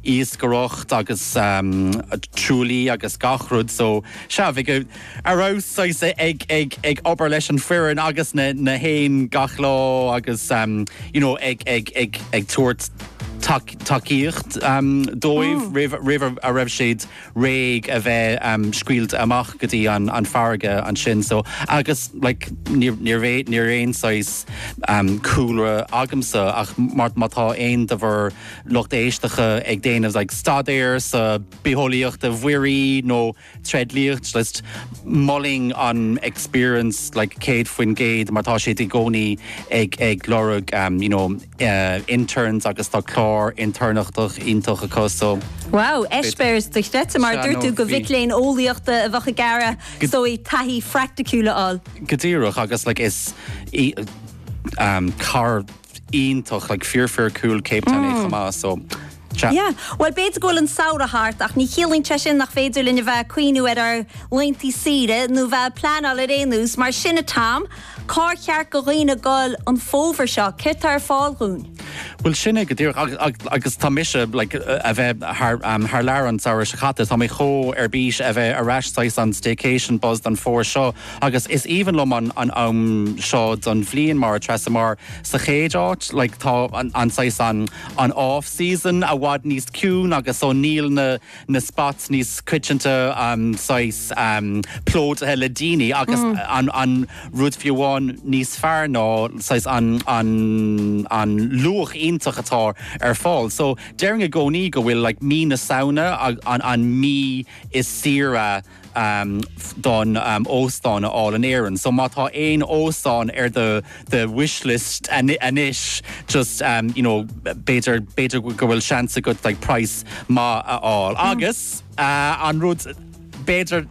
iascaireacht agus truaillí agus gach rud so sea, bhí go raibh saghas ag ag obair leis an foireann agus na na héin gach lá agus you know ag ag ag ag tabhairt tacaíocht dóibh roimh roimh a raibh siad réidh a bheith scaoilte amach go dtí an farraige ansin so agus like ní raibh ní raibh aon saghas cúlra agamsa ach mar má tá aon de bhur lucht éisteacha ag déanamh like staidéar sa bitheolaíocht mhuirí nó tréidliacht just molaim an experience like 100% mar tá siad i gcónaí ag ag lorg you know interns agus tá clár intéirneachta iontach acu so. Wow, eispéireas dochreidte, mar a dúirt tú, do mhic léinn eolaíochta a bheadh ag iarraidh taithí phraiticiúil a fháil. Go díreach agus like is cathair iontach like fíor fíor cool Cape Town í chomh maith so. Yeah. Bhuel, b'fhéidir go bhfuil an samhradh thart, ach ní chiallaíonn sé sin nach féidir linn a bheith ag cuimhniú ar ár laethantaí saoire, nó bheith ag pleanáil ar aon nós mar sin, a Tom. Cár cheart do dhaoine a ghoil an fómhar seo? Céard tá ar fáil dhúinn? Bhuel, sin é go díreach, agus, agus tar éis, like, a bheith thar, um, thar lear an samhradh seo caite, tá mé chomh ar bís a bheith ar ais saghas an staycation buzz don fómhar seo, agus is aoibhinn liom an, an am seo den bhliain mar, Treasa, mar sa chéad áit, like, tá an, an saghas an, an off season, i bhfad níos ciúine agus so níl na na spots níos coitianta saghas plódaithe le daoine agus an an rud fiú amháin níos fearr ná saghas an an an luach iontach atá ar fáil so déarfainn i gcónaí go bhfuil like mí na Samhna an an mí is saoire chun óstán a fháil in Éirinn. So má tá aon óstán ar do do wish list anois just you know b'fhéidir b'fhéidir go bhfuil seans agat like price maith a fháil. Agus an rud b'fhéidir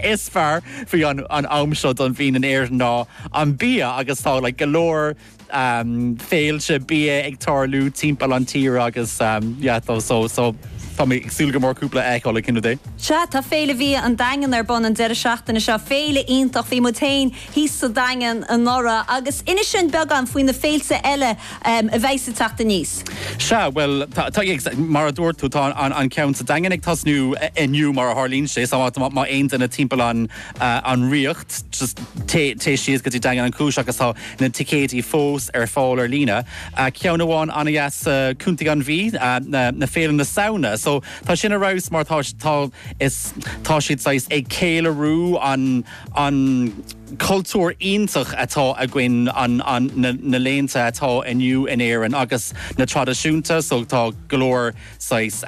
is fearr faoi an am seo den bhliain in Éirinn ná an bia agus tá like go leor féilte bia ag tarlú timpeall an tír agus yeah so so so tá mé ag súil go mór cúpla a fheiceáil le cúnamh Dé. Sea, tá Féile Bia an Daingin ar bun an deireadh seachtaine seo, féile iontach. Bhí muid féin thíos sa Daingean anuraidh agus inis dúinn beagán faoi na féilte eile a bheas ag teacht aníos. Sea, bhuel, tá, mar a dúirt tú, tá an ceann sa Daingean ag tosnú inniu mar a tharlaíonn sé, so má tá aon duine timpeall an Ríocht, just téigh síos go dtí Daingean Uí Chúis agus tá, na ticéidí fós ar fáil ar líne, ceann amháin an-deas i gContae na Mí, ná Féile na Samhna, so tá sin ar fheabhas mar tá, tá, is, tá siad saghas ag céiliúradh an, an cultúr iontach atá againn, an, an, na, na léinte atá inniu in Éirinn agus na traidisiúin, so tá go leor saghas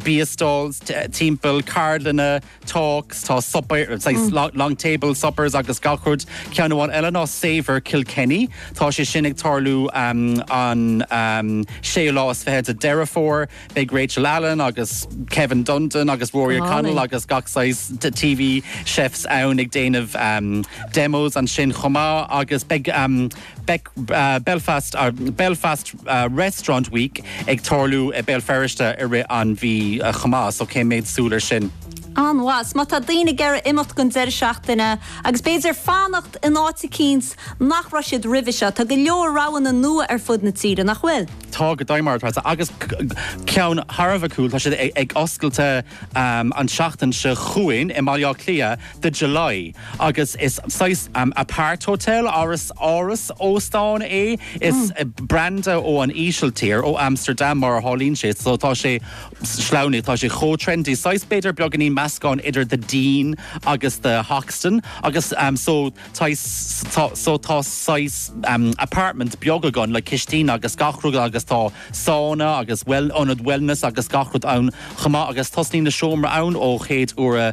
bia stalls timpeall, ceardlanna, talks, tá suipéar, saghas long, long table suppers agus gach rud. Ceann amháin eile ná Savour Kilkenny. Tá sé sin ag tarlú um, an um, séú lá is fiche de Deireadh Fómhair. Beidh Rachel Allen agus Kevin Dundon agus Rory O'Connell agus gach saghas de TV chefs ann ag déanamh um, demos ansin chomh maith agus beidh um, Beidh Belfast Belfast Restaurant Week ag tarlú i Béal Feirste i rith an mhí chomh maith, so coiméad súil ar sin? An-mhaith. So má tá daoine ag iarraidh imeacht don deireadh seachtaine agus b'fhéidir fanacht in áit eicínt nach raibh siad roimhe seo, tá go leor roghanna nua ar fud na tíre, nach bhfuil? Tá, go deimhin, agus ceann thar a bheith cool, tá siad ag oscailte an tseachtain seo chugainn i mBaile Átha Cliath, the July agus is saghas apart hotel, áras óstán é. Is branda ó an Ísiltír, ó Amsterdam mar a tharlaíonn sé, so tá sé Ollannach, tá sé chomh trendy, saghas b'fhéidir beagáinín meascán idir the Dean agus the Hoxton agus so saghas tá so tá saghas apartment beag agat le cistín agus gach rud agus tá sauna agus ionad wellness agus gach rud ann chomh maith agus tosnaíonn na seomraí ann ó chéad euro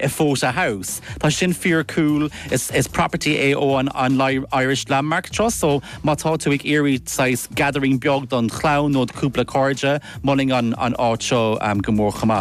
e Fota House. Tá sin fíor cool, is is property é ó an an Irish Landmark Trust so má tá tú ag iarraidh saghas gathering beag don chlann nó do cúpla cairde, mholfainn an an áit seo go mór chomh maith.